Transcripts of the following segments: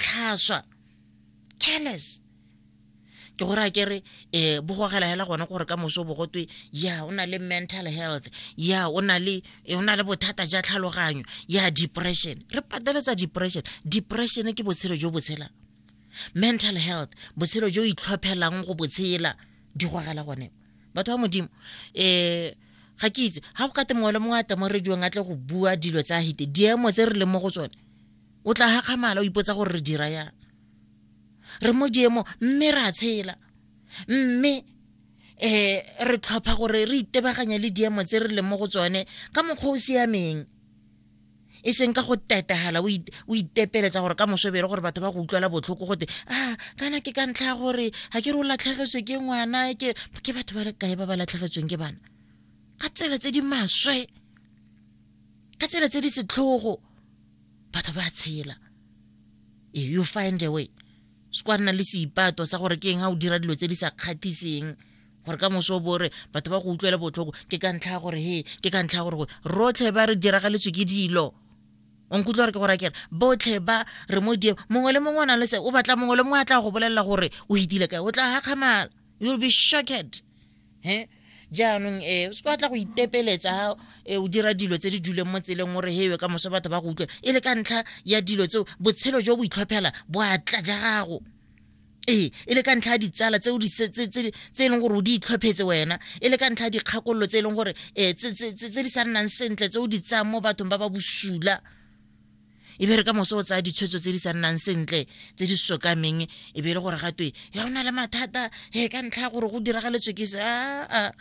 tlhaswa careless ke gore a kere um bogogela hela gone gore ka moso bo gotwe ya o na le mental health ya o na le eh, o na le bothata ja tlhaloganyo ya depression re pateletsa depression depression ke botshelo jo botshelang mental health botshelo jo itlhophelang go botshela di gogela gone batho ba modimo um ga ke itse ga go kate mongwe le mongwe a tla mo rediong a tle go bua dilo tsa hite diemo tse re leng mo go tsone o tla gakgamala o ipotsa gore re dira yang re mo diemo mme re a tshela mme um re tlhopha gore re itebaganya le diemo tse re leng mo go tsone ka mokgwa o siameng e seng ka go tetagala o itepeletsa gore ka mosobere gore batho ba go utlwela botlhoko gote a ah, kana ke ka ntlha ya gore ga ke re o latlhegetswe ke ngwana ke batho ba le kae ba ba latlhegetsweng ke bana ka tsela tse di maswe ka tsela tse di setlhogo batho ba tshela eh, you find a way sekwa nna le seipato sa gore ke eng ga o dira dilo tse di sa kgathiseng gore ka moso o bore batho ba go utlwele botlhoko ke ka ntlha ya gore he ke ka ntlha ya gore rotlhe ba re diragaletswe ke dilo o nkutlwa gore ke gore kere botlhe ba re mo die mongwe le mongwe o nang le se o batla mongwe le mongwe a tla go bolelela gore o itile kae o tla gakgamala you'll be shocked he jaanong e o se ka tla go itepeletsa e, o dira dilo tse di duleng mo tseleng o re hewe ka moso batho ba go utlwa e le ka ntlha ya dilo tseo botshelo jo bo itlhophela bo atla ja gago ee e le ka ntlha ya ditsala tse e leng gore o di itlhophetse wena e le ka ntlha ya dikgakololo tse e leng gore um tse di sa nnang sentle tse o di tsayang mo bathong ba ba bosula e be re ka moso o tsaya ditshwetso tse di sa nnang sentle tse di sokameng e be e le gore ga twe ya o na le mathata e ka ntlha ya gore go diragaletswe ke se aa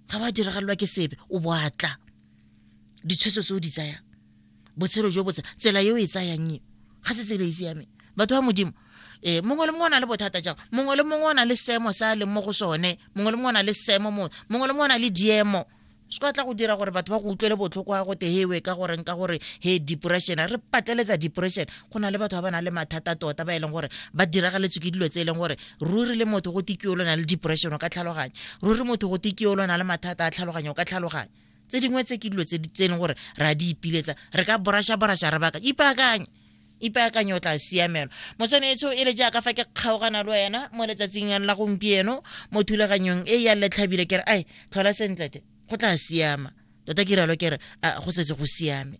ga ba diragalelwa ke sebe o boatla ditshwetso tse o di tsayang botshelo jo botse tsela e o e tsayang eo ga se tsela e siameng batho ba modimo eh mongwe le mongwe o na le bothata jang mongwe le mongwe o na le seemo sa a leng mo go sone mongwe le mongwe o na le seemo mongwe mongwe le mongwe o na le diemo se ka tla go dira gore batho ba go utlwele botlhoko ya gote hewe ka goreng ka gore he depression re patleletsa depression go na le batho ba ba nang le mathata tota ba e leng gore ba diragaletswe ke dilo tse e leng gore ruri le motho go tekio lona le depression o ka tlhaloganya ruri motho go tekio lona le mathata a tlhaloganya o ka tlhaloganya tse dingwe tse ke dilo tse e leng gore re a di ipiletsa re ka borasha borasha re baka ipaakanye ipaakanye o tla siamelwa motswanetso e le jaaka fa ke kgaogana le wena mo letsatsing la gompieno mo thulaganyong e ya letlhabile kere ai tlhola sentlete go tla siama tota ke ralo kere go setse go siame